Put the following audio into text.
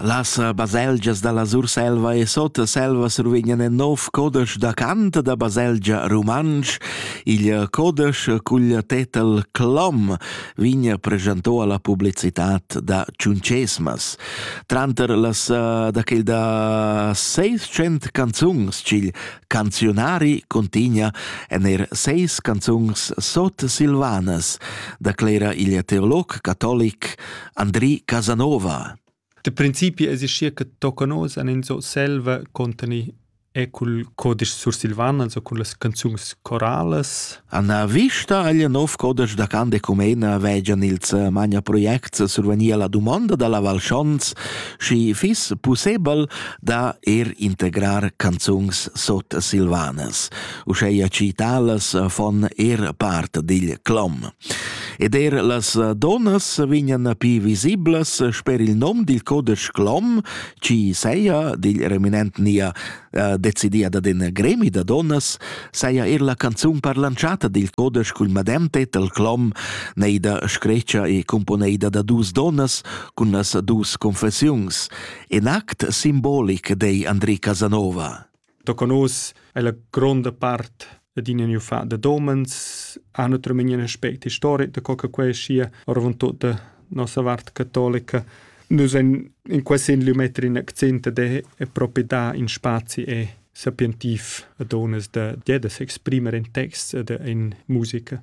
Las baselgias dalla Surselva e Sotselva survegnan in nov codesch da cant da baselgia rumantsch. Il codesch cugl tetel Clom vegn preschanto alla publicitat da Ciuncesmas. Tranter las eh, da quel da 600 canzungs cil canzionari contina en er seis canzungs sot Silvanas, da clera il teolog catolic Andri Casanova. Da principi existia che toccan oz en in so selva conteni e cul codisch sursilvan, also cun las canzuns coralas. Anna vista agl nov codisch da can de Cumena vegian ils magna projects survenir la domanda dalla Val Schons, schi fiss pussebel da er integrar canzuns sot silvanas, uscheia ci talas von er part digl clom. Ed er las eh, donnas vegnan pi visiblas sper il nom dil codesch Glom, ci seia dil reminent nia eh, decidia da den gremi da donnas, seia er la canzun parlanciata dil codesch cul madem tetel Glom, neida screcia e componeida da dus donnas cun las dus confessiuns, en act simbolic dei Andri Casanova. Tocca nus è la gronda part adina gnü fat da domens, ha natüralmaing ün aspect istoric da co che quai schia, oravontut da nossa vart catolica. Nus en, in quest sin lö metter ün accent ed è, è propi dà in spazi e sapientiv a donas da, da s'exprimer in texts ed in musica.